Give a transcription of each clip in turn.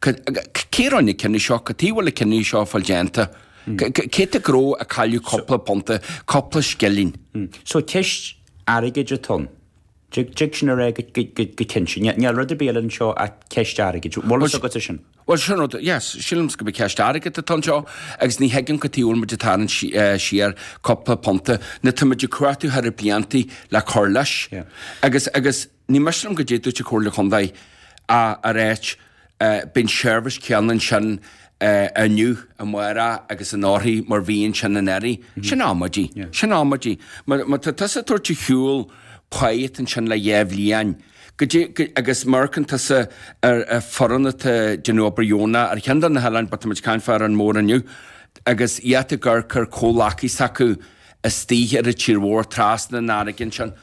Cé a rinne na cinní seo? Cad tuige a bhfuil na cinní seo fáil déanta? Cé tá ag dul a chailleadh cúpla punta, cúpla scillín? So ceist airgid atá ann. D'fhag sin ar é go cinnte. Níl rud ar bith eile anseo ach ceist airgid. Bhfuil fhios agat ar sin? Bhuel, sin rud, yes, sílim gurb é ceist airgid atá anseo agus ní thuigim cad tuige a bhfuil muid ag tarraingt siar cúpla punta nuair tá muid ag cuartú thar bliantaí le cur leis agus, agus, Ní miste liom caidé dúirt an Chomhairle Chontae, ag ráit beidh an tseirbhís chéanna ansin inniu, amárach agus anóirthear mar bhí ansin anuraidh. Sin amaidí. Sin amaidí. Má tá tusa ag tabhairt ar shiúl post ansin le dhá bhliain, go dtí, go, agus má amharcann tusa ar foireann atá ag déanamh obair dheonach ar cheann de na hoileáin, but tá muid ag caint fá Árainn Mhór inniu, agus iad ag amharc ar comhghleacaithe s'acu istigh ar an tír mhór trasna an fharraige ansin.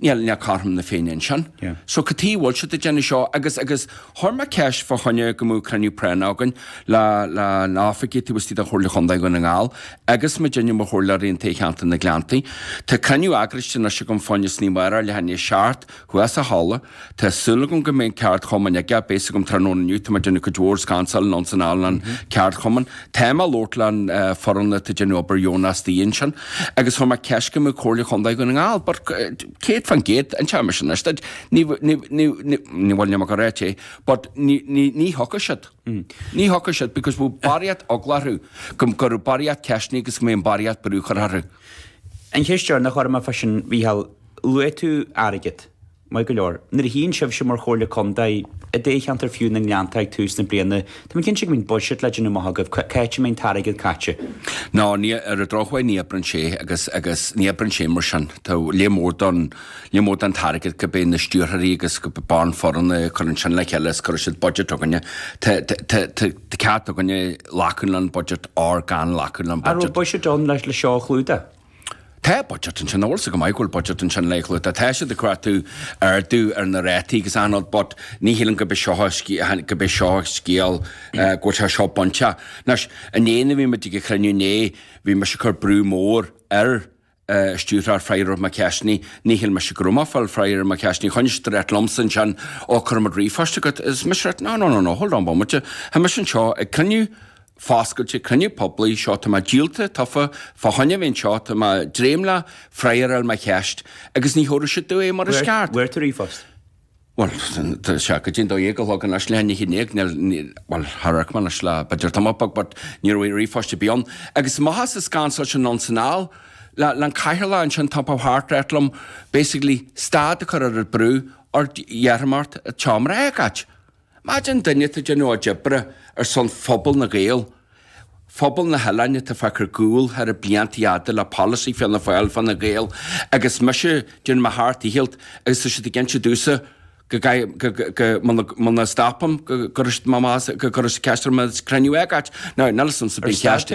Níl cothrom na Féinne ansin. So cad tuige bhfuil siad ag déanamh seo? Agus, agus chuir mé ceist fá choinne go mbeadh cruinniú práinneach againn le, le na hoifigigh taobh istigh den Chomhairle Chontae Dhún na nGall agus muidinne mar chomhairleoirí i dtoghcheantar na nGleanntaí. Tá cruinniú eagraiste anois agam fá choinne san oíche amárach, leath i ndiaidh a seacht, thuas sa halla, Tá súil agam go mbeidh an ceardchumann ag a, beidh fhios agam tráthnóna inniu, tá muid ag déanamh cuid mhór scansáil anonn is anall an ceardchumann. Tá mé ag labhairt le an foireann atá déanamh obair dheonach istigh ansin agus chuir mé ceist go mbeadh Comhairle Chondae Dhún na nGall but céad fán gcéad déarfaidh mé sin anois duit, ní bhfuil ní go ráite é but ní ní ní thiocfaidh siad, ní thiocfaidh siad because bhfuil barraíocht eagla orthu go go raibh barraíocht ceisteanna agus go mbeidh an barraíocht brú curtha orthu. An cheist seo nach orm a freisin Mhícheál, Luaigh tú airgead. Maith go leor. Nuair a shuíonn sibhse mar Chomhairle Contae i dtoghcheantar fiú na nGleannta ag tús na bliana, tá mé cinnte go mbíonn buiséad le déanamh amach agaibh, cá háit a mbeidh an t-airgead caite. No, ní, ar an drochuair ní oibreann sé agus, agus ní oibreann sé mar sin. Tá lear mór don, lear mór den t-airgead gurb é na stiúrthóirí agus gurb é an foireann a chuireann sin le chéile is cuireann siad budget againne. Tá, tá, tá, tá ceart againne glacadh leis an budget or gan glacadh leis an budget. An raibh buiséad ann le, le seo a chlúdach? Tá budget ansin, nach bhfuil fhios go maith go bhfuil budget ansin le clúdach. Tá siad ag cuartú ardú ar na rátaí agus anall, but ní shílim gurb é seo an sc- gurb é seo an scéal go bhfuil sé seo bainte. Anois, inné nuair a bhí muid ag an chruinniú inné, bhí mise ag cur brú mór ar stiúrthóir, freagra ar mo cheisteanna. Ní shíl mise go raibh mé ag fáil freagra ar mo cheisteanna. Choinnigh siad ag ráit liomsa ansin, Ó, cuirfidh muid ríomhphost agat. Is mise ag ráit, no, no, no, no, hold on one minute, tá mise anseo ag cruinniú Foscailte Cruinniú Poiblí seo tá mé díolta, tofa, fá choinne a bheith anseo, tá mé dréim le freagra ar mo cheist, agus ní thabharfaidh siad domh é mar is ceart. Fuair tú ríomhphost? Bhuel, tá sé go dtí an dó dhéag a chlog anois leath i ndiaidh, níl, níl, bhuel, d'amharc mé anois le, b'fhéidir tamall beag, but ní raibh ríomhphost ar bith ann. Agus maitheas sa scansáil anonn 's anall, le, le an cathaoirleach ansin ag tiompú thart ag ráit liom basically stad a chur ar an brú, or iarrfaidh mé ort an seomra a fhágáilt. Maidin duine atá ag déanamh a chuid oibre ar son phobal na Gaeil, phobal na hoileáin atá fágtha ar gcúl thar na blianta fada le polasaí Fianna Fáil Fine Gael agus mise ag déanamh mo sheacht ndícheall agus tá siad ag inse domhsa go gcaithfidh go muna stopaim go gcuirfidh siad mo bhás go gcuirfidh siad ceist orm an cruinniú a fhágáilt nó níl fhios a'msa bíonn ceist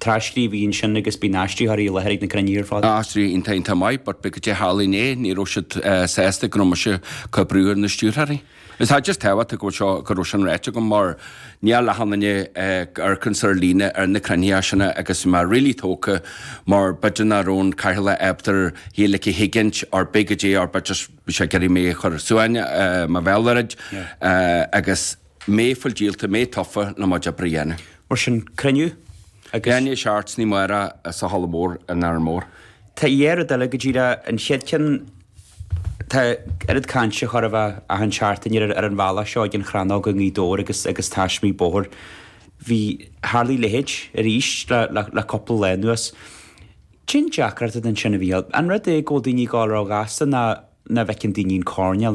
Tras-scríbhinn ansin agus bíonn aistritheoirí i láthair ag na cruinnithe ar fad. Aistritheoirí iontach iontach maith but b'fhéidir goidé a tharla inné ní raibh siad sásta go raibh mise ag cur brú ar na stiúrthóirí. Is I just tábhachtach go bhfuil seo go raibh sin ráite agam mar ní raibh leath na ndaoine argcans ar líne ar na cruinnithe áiseanna agus mé really tógtha mar b'fhéidir nach raibh an cathaoirleach ábalta é like a thuigint or b'fhéidir goidé or but just bhí sé ag iarraidh mé a chur suain mo bhéal a dhruid agus mé ag fáil díolta, mé tofa le mo job a dhéanamh. Mar sin cruinniú ag a seacht oíche amárach sa Halla Mór in Árainn Mhór. Tá dhá rud eile go díreach an chéad cheann Tá oiread cainte chóir a bheith achan seachtain ar an bhealach seo ag an Chrannóg i nGaoth Dobhair agus agus taismigh bóthar. Bhí tharla a leithéid arís le le cúpla lá anuas. Cén deacracht ansin a bhí ann? An rud é go bhfuil daoine ag gabháil róghasta nó nach bhfeiceann daoine an coirnéal